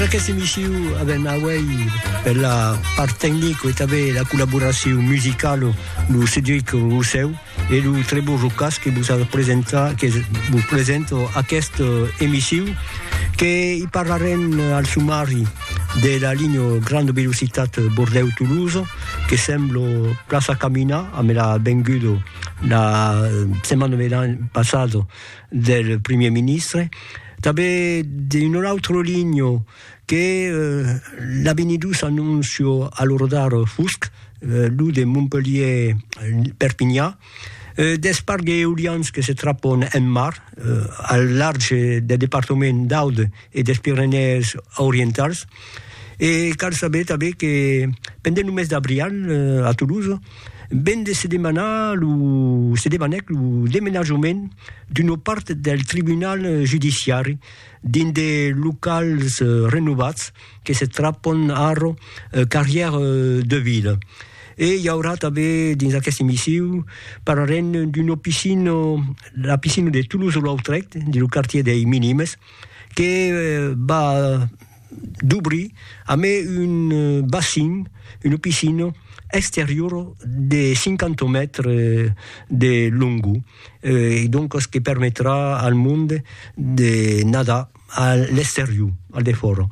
Perque se missiu a ben auei per la part tecnico e tanben la collaboracion musicalo lo Cedric Rossèu e lo Trevor Rocas que vos a presentar, que vos presento aquest emissiu que i parlarem al sumari de la linha grande velocitat Bordèu-Toulouse que semblo plaça caminar, a me l'à vengudo la setmana passada del Primièr Ministre, tanben d'un autre ligno que l'a benidus annuncio a lo rodar fusc, lo de Montpelhier-Perpinha, deth parc d'eolians que se trapon en mar al larg deth departament d'Aude e des Pirenèes Orientals. E cal saber tanben que pendent lo mes d'abrial a Toulouse, Ven de se demanar lo se demanèc lo demenajament d'una part del tribunal judiciari dins de locals renovats que se trapon ara Carrière de Ville. E i aurà tanben dins aqueste missiu parlarem d'una piscina, la piscina de Toulouse-Lautrec, dins lo quartier dei Minimes, que va dubrir amé un bassin, una piscina exteriora de 50 mètres de longor e doncas que permetrà al monde de nadar a l'exterior, al defòra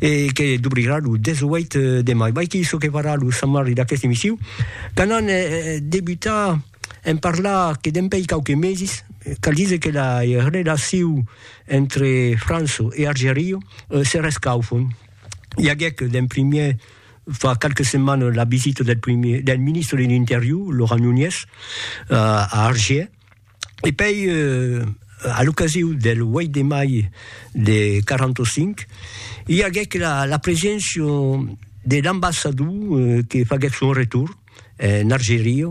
e que dubrirà lo 18 de mai. Vai que çò que farà lo Sant Marri d'aqueste emissiu, quand an debutat en parlar que dempèi quauques meses, cal díser que la relacion Entre Franço e Argerio se rescaufon. I aguèc d'en primièr fa qualques setmanes la visita del primièr del ministre de l'Interior, Laurent Nunez, a Argier, e pei a l'ocasiu del 8 de mai de 45 i aguèc la preséncia de l'ambassador que faguèt son retorn. en Argeria,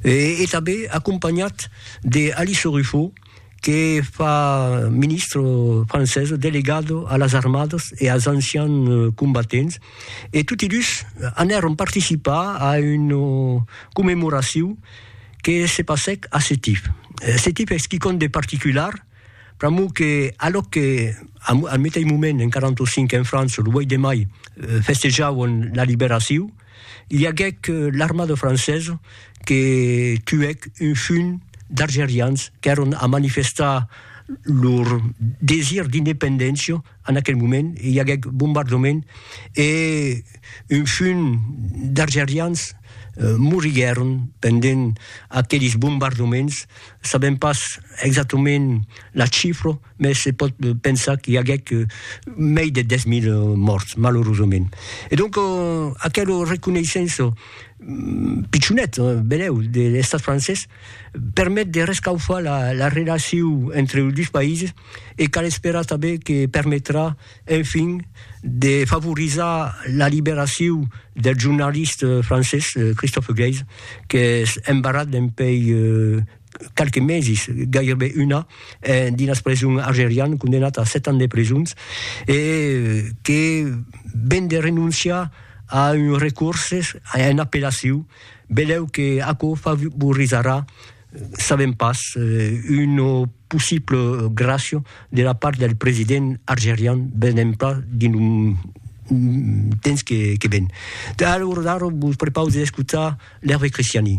e tanben acompanhat de Alice Ruffo, que fa ministre francesa delegado a las armadas e als ancians combatents, e toti dus anèron participar a una commemoracion que se passèc a Setif. Setif es quicòm de particular, pr'amor que alòc que al meteis moment en 45 en França, lo 8 de mai, festejavan la liberacion, I aguèc l'armada francesa que tuèc un junh d'argerians qu'èron a manifestar lor desir d'independéncia en aquel moment, i aguèc bombardament e un junh d'argerians moriguèron pendent aquelis bombardaments, sabèm pas exactament la chifra. mès se pòt pensar qu'i aguèc mei de 10.000 mòrts, malorosament. E donc, aquelo reconeissenço pichonet, benèu, de l'Estat francés permet de rescaufar la relacion entre los dus païses e cal esperar tanben que permetrà, enfin, de favorizar la liberacion del jornalist francés Christophe Geisz, qu'es embarrat dempuèi qualques meses, gaireben un an, dins las presons algerianes, condemnat a 7 ans de presons, e que ven de renonciar a un recurses, a una appellacion, beleu que aquò favorisarà, sabem pas, una possible gràcia de la part del president algerian, venem pas dins lo temps que ven. Alor ara vos prepausi d'escotar l'Hervé Christiani.